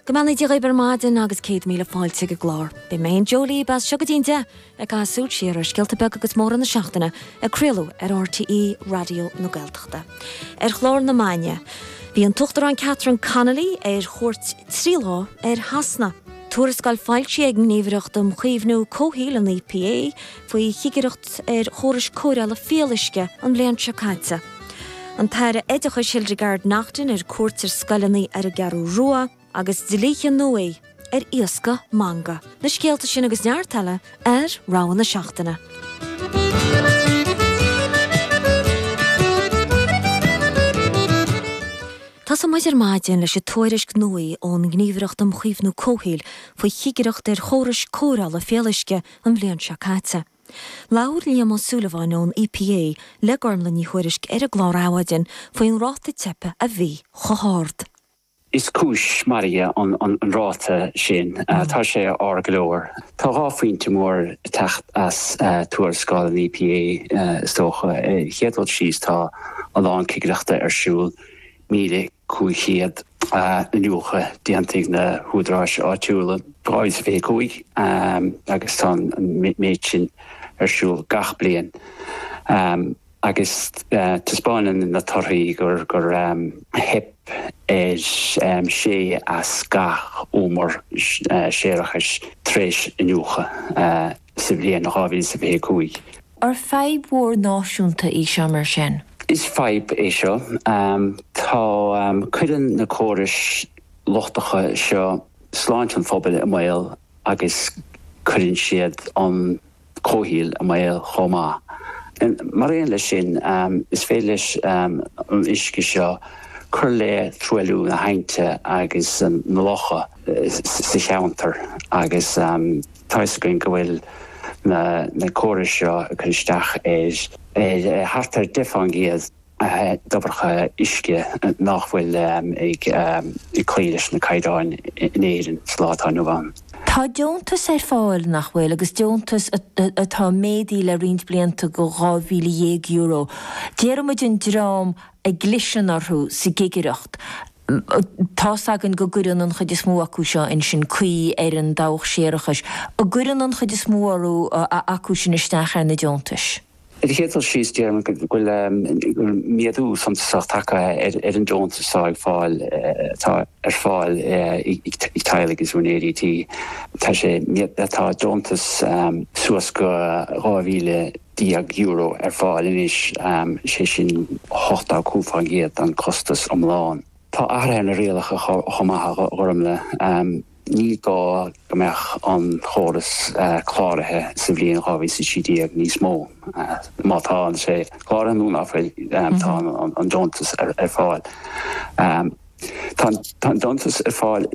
Go mbeannaí Dia dhaoibh ar maidin agus céad míle fáilte ag an gclár. Beidh mé in éindí libh as seo go dtí an deich ag caitheamh súil siar ar scéalta beaga agus móra na seachtaine ag craoladh ar RTÉ Raidió na Gaeltachta. Ar chlár na maidne bhí an tUachtarán Catherine Connolly ar chuairt trí lá ar Shasana. Tuarascáil foilsithe ag an nGníomhaireacht um Chaomhnú Comhshaoil, an EPA, faoi chigireacht ar chórais cóireála fuíolluisce an bhliain seo caite. An tAire Oideachais Hildegarde Naughton ar cuairt ar scoileanna ar an gCeathrú Rua agus dlíthe nua ar iascach mangach. Na scéalta sin agus neart eile ar Rogha na Seachtaine. Tosóidh muid ar maidin leis an tuairisc nua ón nGníomhaireacht um Chaomhnú Comhshaoil faoi chigireacht ar chórais cóireála fuíolluisce an bhliain seo caite. Labhair Liam Ó Súilleabháin ón EPA le Gormlaith Ní Thuairisg ar an gclár Adhmhaidin faoin ráta teipe a bhí chomh hard. Is cúis mairg an ráta sin. Tá sé ard go leor. Tá dhá phointe mór ag teacht as tuarascáil an EPA is dócha. Ar an chéad dul síos tá a lán cigireachta ar siúl, 1,000 500 iniúchadh déanta ag na húdaráis áitiúla, 2025, agus tá an méid sin ar siúl gach bliain, agus taispeáineann na torthaí gur theip ar sé as gach deich umar séarachais tar éis iniúchadh. sa bhliain 2025. Ar fadhb mhór náisiúnta í seo mar sin? Is fadhb é seo. Tá. Cuireann na córais lochtacha seo sláinte an phobail i mbaol agus cuireann siad an comhshaol i mbaol chomh maith. Mar aon leis sin, is féidir leis an uisce seo cur le truailliú na haibhnte agus na locha sa cheantar agus. toisc go bhfuil na córais seo ag cur isteach ar thart ar 10% de dhobharlaigh uisce nach bhfuil ag cloí leis na caighdeáin in Éirinn sa lá atá inniu ann. Tá deontais ar fáil nach bhfuil, agus deontais atá méadaithe le roinnt blianta go €12,000. Déarfaimid an dream a gcliseann orthu sa gcigireacht. Tá's againn go gcuireann an chuid is mó acu seo ansin caoi ar an dabhach séarachais a gcuireann an chuid is mó orthu acu sin isteach ar na deontais. Ar an chéad dul síos, déarfainn go bhfuil méadú suntasach tagtha ar an deontas atá ag fáil atá ar fáil ag teaghlaigh agus úinéirí tí. Tá sé, tá deontas suas go 2,000 déag euro ar fáil anois, sé sin 85% den chostas iomlán. Tá athruithe ar na rialacha chomh maith a Ghormlaith. Ní gá go mbeadh an córas cláraithe sa bhliain 2013 níos mó. Má tá sé cláraithe nó ná fuil, tá an deontas ar fáil. Tá an deontas ar fáil.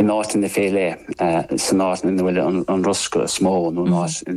in áiteanna fé leith, san áit ina bhfuil an riosca is mó nó an áit.